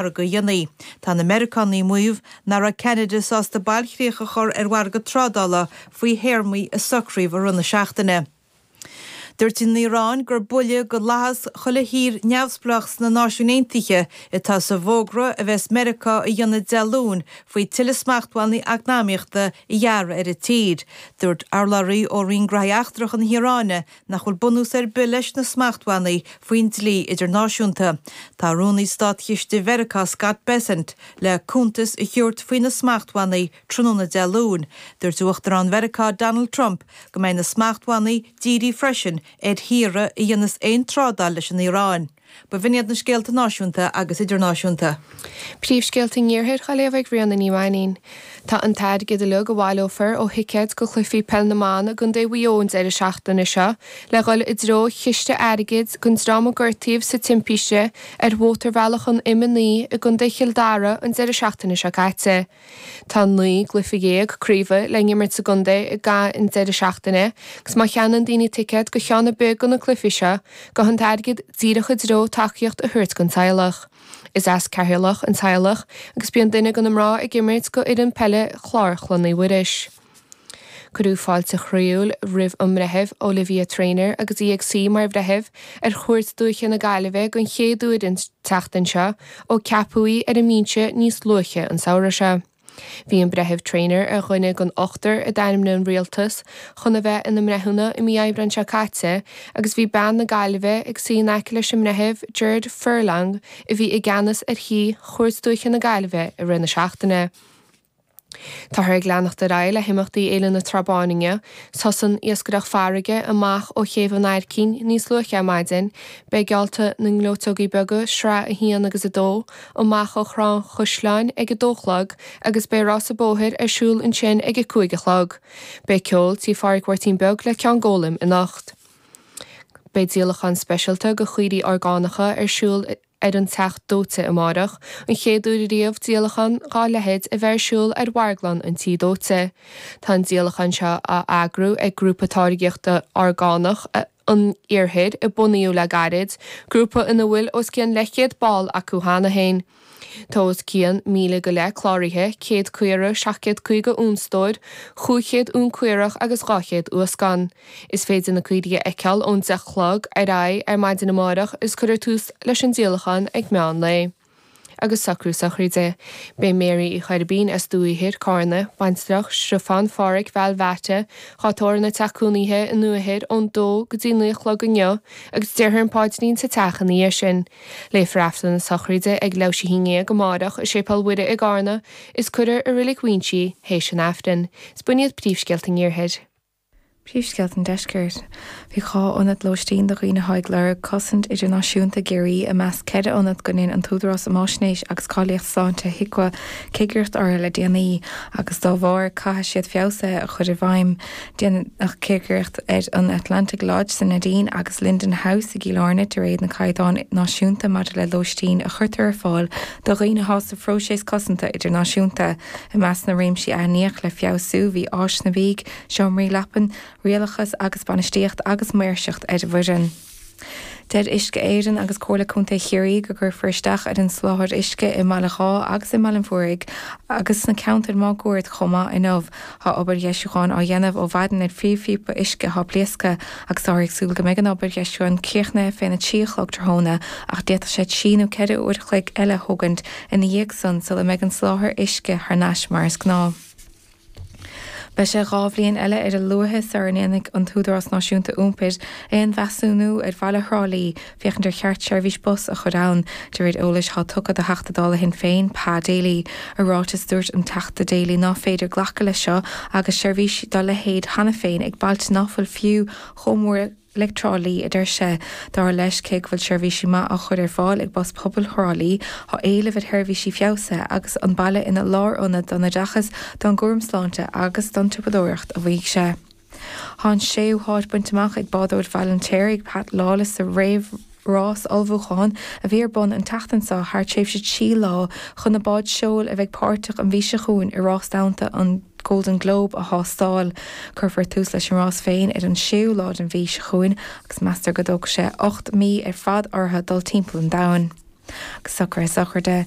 mhargadh a dhéanamh. Tá na Meiriceánaigh ag maíomh nach raibh Ceanada sásta bailchríoch a chur ar mhargadh trádála faoi théarmaí a socraíodh i rith na seachtaine. Dúirt an Iaráin gur buille go fhlaitheas chuile thír neamhspleách sna Náisiúin Aontaithe atá sa bhfógra a bheas Meiriceá a dhéanamh Dé Luain faoi tuilleadh smachtbhannaí eacnamaíochta a ghearradh ar an tír. Dúirt urlabhraí ó Roinn Gnóthaí Eachtracha na hIaráine nach bhfuil bunús ar bith leis na smachtbhannaí faoin dlí idirnáisiúnta. Tá Rúnaí Státchiste Mheiriceá Scott Bessent le cuntas a thabhairt faoi na smachtbhannaí tráthnóna Dé Luain. Dúirt Uachtarán Mheiriceá Donald Trump go mbeidh na smachtbhannaí dírithe freisin ar thíortha a dhéanas aon trádáil leis an Iaráin. Ba shin iad na scéalta náisiúnta agus idirnáisiúnta. Príomhscéalta an Iarthair á léamh ag Ríona Ní Mhainín. Tá an t-airgead uilig a bhaileofar ó thicéid go cluichí Peil na mBan i gContae Mhaigh Eo an deireadh seachtaine seo le dhul i dtreo chiste airgid don dream a gortaíodh sa timpiste ar Mhótarbhealach an M9 i gContae Chill Dara an deireadh seachtaine seo caite. Tá naoi gcluife dhéag craoibhe le n-imirt sa gcontae i gcaitheamh an deireadh seachtaine agus má cheannaíonn daoine ticéad go ceann ar bith do na cluifí seo, gabhfaidh an t-airgead díreach i dtreo tacaíocht a thabhairt don teaghlach. Is as Ceatharlach an teaghlach agus bíonn duine de na mná ag imirt go fhoireann peile Chlár Chlainne Mhuiris. Cuireadh fáilte chroíúil roimh an mBreitheamh Olivia Traynor agus í ag suí mar bhreitheamh ar Chúirt Dúiche na Gaillimhe den chéad uair an tseachtain seo ó ceapadh í ar an mbinse níos luaithe an samhradh seo. Bhí an Breitheamh Traynor ar dhuine den ochtar a d'ainmnigh an Rialtas chun a bheith ina mbreithiúna i mí Aibreáin seo caite agus bhí bean na Gaillimhe ag suí in aice leis an mBreitheamh Gerard Furlong a bhí i gceannas ar Chúirt Dúiche na Gaillimhe i rith na seachtaine. Táthar ag leanacht ar aghaidh le himeachtaí Fhéile na Trá Báine inniu. Thosaigh an iascaireacht farraige amach ó chéibh an Aircín níos luaithe ar maidin. Beidh geallta na ngleoiteogaí beaga, sraith 1 agus 2, amach ó Thrá an Chaisleáin ag a dó a chlog agus beidh rása bóthair ar siúl ansin ag a cúig a chlog. Beidh ceol tí Pháraic Mháirtín Beag le Ceann Gólaim anocht. Beidh díolachán speisialta de chaoirigh orgánacha ar siúl i. ar an Teach Dóite amárach, an chéad uair riamh díolachán dhá leithéid a bheith ar siúl ar mharglann an Tí Dóite. Tá an díolachán seo á eagrú ag grúpa táirgíochta orgánach an Iarthair a bunaíodh le gairid, grúpa ina bhfuil os cionn leithchéad ball acu cheana féin. Tá os cionn míle go leith cláraithe, céad caora, seacht gcéad caoga uan stóir, chúig chéad uan caorach agus dhá chéad uascán. Is féidir na caoirigh a fheiceáil ón 10 a chlog ar aghaidh ar maidin amárach is cuirfear tús leis an díolachán ag meán lae. Agus socrú sochraide. Beidh Mary Uí Choirbín as Dumhaigh Ithir, Carna, baintreach Stiofán Pháraic Val Bheairtle, dhá tórramh ina teach cónaithe i nDumhaigh Ithir ón dó go dtí naoi a chlog inniu agus déarfar an paidrín sa teach ina dhiaidh sin. Léifear Aifreann na Sochraide ag leathuair théis a haon ndéag amárach i Séipéal Mhuire i gCarna is cuirfear í i Reilig Mhaínse théis an Aifrinn. Is b'shin iad príomhscéalta an Iarthair. Príomhscéalta an Deiscirt. Bhí dhá ionad lóistín do dhaoine atá ag lorg cosaint idirnáisiúnta i gCiarraí i measc ceithre ionad go ndein an tÚdarás um Fháisnéis agus Cáilíocht Sláinte, HIQA, cigireacht orthu le déanaí agus dá bharr caithfidh siad feabhsuithe a chur i bhfeidhm. Déanadh cigireacht ar an Atlantic Lodge sa Neidín agus Linden House i gCill Airne de réir na gcaighdeán náisiúnta maidir le lóistín a chuirtear ar fáil do dhaoine atá sa phróiseas cosanta idirnáisiúnta. I measc na réimsí a aithníodh le feabhsú bhí áiseanna Seomraí leapan, rialachas agus bainistíocht agus maoirseacht ar an bhfoireann. Deir Uisce Éireann agus Comhairle Contae Chiarraí go gcuirfear isteach ar an soláthar uisce i mBaile Dháith agus i mBaile an Mhúraigh agus sna ceantair máguaird chomh maith inniu. Tá obair dheisiúcháin á dhéanamh ó mhaidin ar phríomhphíopa uisce atá pléasctha agus táthar ag súil go mbeidh an obair dheisiúcháin críochnaithe fén 3 a chlog tráthnóna ach d'fhéadfadh sé trí nó ceithre uair a chloig eile a thógaint ina dhiaidh san sula mbeidh an soláthar uisce thar n-ais mar is gnáth. Beidh sé dhá bhliain eile ar a luaithe sara ndéanfaidh an tÚdarás Náisiúnta Iompair aon mheasúnú ar bhaile Thrá Lí féachaint ar cheart seirbhís bus a chur ann, de réir eolais atá tugtha do Theachta Dála Shinn Féin, Pa Daly. I ráiteas, dúirt an Teachta Daly ná féidir glacadh leis seo agus seirbhís dá leithéid cheana féin ag bailte ná fuil fiú chomh mór le Le Trá Lí, a deir sé. Dar leis, cé go bhfuil seirbhísí maith á chur ar fáil ag Bus Pobail Thrá Lí, tá éileamh ar sheirbhísí feabhsaithe agus an baile ina lárionad don oideachas, don gcúram sláinte agus don tsiopadóireacht, a mhaígh sé. Tá an séú háit bainte amach ag bádóir Bhaile an Fheirtéaraigh, Pat Lawless, sa réamh Rás ullmhúcháin a bhí ar bun an tseachtain seo thar tréimhse trí lá chun na báid seoil a bheidh páirteach an mhí seo chugainn i Rás Domhanta an Golden Globe a thástáil. Cuirfear tús leis an rás féin ar an séú lá den mhí seo chugainn agus meastar go dtógfaidh sé ocht mí ar fad orthu dul timpeall an domhain. Agus socrú sochraide.